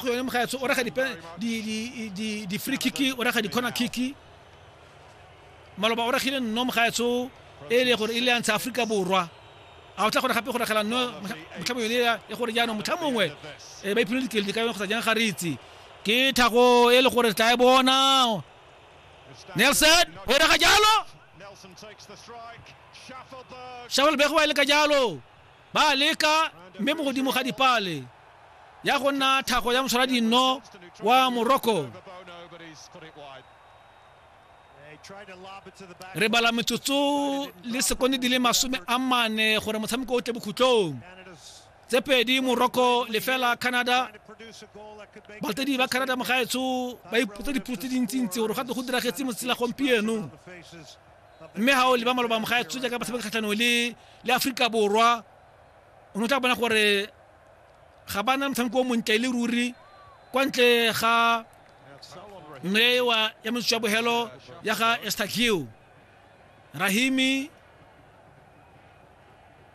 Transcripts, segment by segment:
go yone mogaetsho o raga di-free kiki o raga di-corner kiki maloba o ragile nno mogaetsho e e le gore e le yantsha aforika borwa a o tla gore gape go ragela nno motlhamo yone ya gore jaanong motlha mongwe um ba iphile dikeledi ka yone kgotsa jang ga re itse ke thako e le gore tla e bona nelson o raga jalo shuffleberg wa e le ka jalo Ba a leka, mme mo godimo ga dipale ya go nna thago ya motshwara dinno wa Morocco. Re bala metsotso le sekonde di le masome a mane gore motshameko o tle bokhutlong. tse pedi morocco lefela canada balatedi ba canada mogaetsho ba ipotsa dipotso tse dintsintsi gore gate go diragetse motsela gompieno mme ga o leba maloba moga ya tshotse ka batshameki kgatlhanong le le aforika borwa o ne o tla bona gore ga ba na motshameko o montle e le ruri kwa ntle ga nnewa ya metsotso ya bogelo ya ga estakio rahimi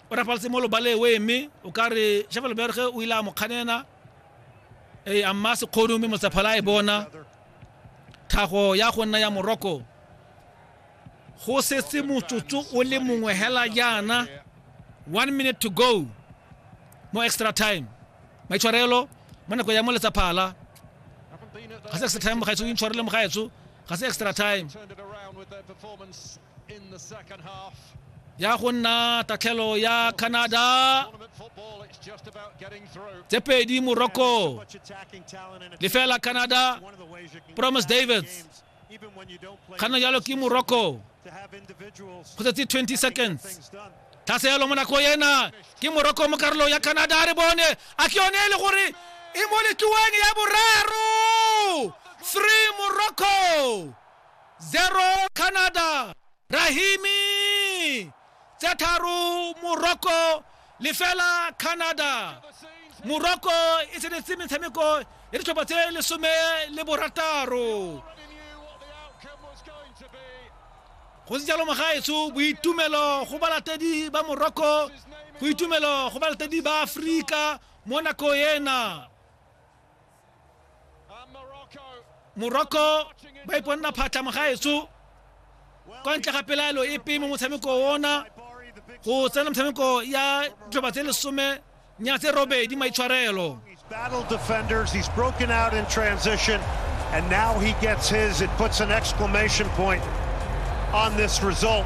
o rapaletse mo lobale o eme o ka re shafelo berge o ile a mo kganena ee a mma sekgono mme motsaphala a e bona tlhago ya go nna ya moroko go setse motsotso o le mongwe hela jaana one minute to go mo extra time maitshwarelo mo nako ya mo letsaphala ga se extra time mogaetso o intshwarele mogaetso ga se extra time ya go nna tatlhelo ya canada tse pedi morocco lefela canada promise davids ga nna jalo ke morocco go tsetse 20 seconds tlhaseelo mo nako ena ke morocco mo karolong ya canada a re bone a ke yone e le gore e mo letloeng ya boraro three morocco zero canada rahimi tse tharo morocco lefela canada morocco e tsenetse metshameko ya ditlhopha tse lesome le borataro go se jalo mogaetsho boitumelo go balatedi ba morocco boitumelo go balatedi ba aforika mo nako ena morocco ba iponna phatlha mogaetso kwa ntle ga pelaelo epe mo motshameko ona go tsena motshameko ya ditlhoba tse lesome nya tse robedi maitshwarelo battle defenders he's broken out in transition and now he gets his it puts an exclamation point on this result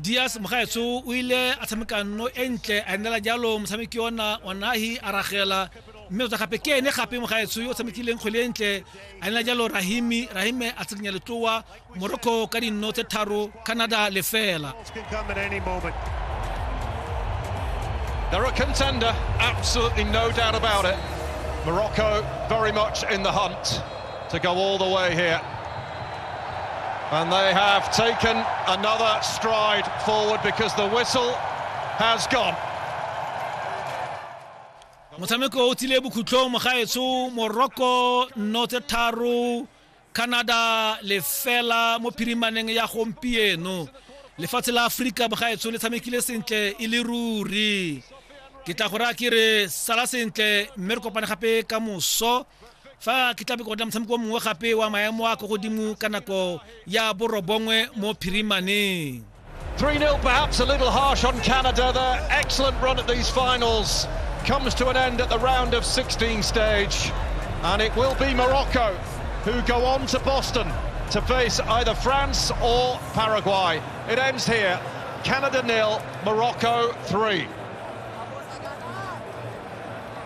dias mogaetsho o ile a tshameka nno e ntle a nnela jalo motshameki ona wa nahi a ragela mme tota gape ke ene gape mogaetsho yo o tshamekileng kgwele e ntle a nnela jalo rahimi rahime a tshikinya letloa morocco ka dinno tse tharo canada lefela Dara contender, absolutely no doubt about it. Morocco very much in the hunt. to go all the way here. And they have taken another stride forward because the whistle has gone. motshameko o tsile bokhutlong mogaetsho morocco nno tse tharo canada lefela mo phirimaneng ya gompieno lefatshe la aforika mogaetsho le tshamekile sentle e le ruri ke tla go raya ke re sala sentle mme re kopane gape ka moso fa ke tlabe ke otla motshameko mongwe gape wa maemo a ko godimo ka nako ya borobongwe mo phirimaneng 3-0 perhaps a little harsh on Canada there. Excellent run at these finals. Comes to an end at the round of 16 stage. And it will be Morocco who go on to Boston to face either France or Paraguay. It ends here. Canada nil, Morocco 3.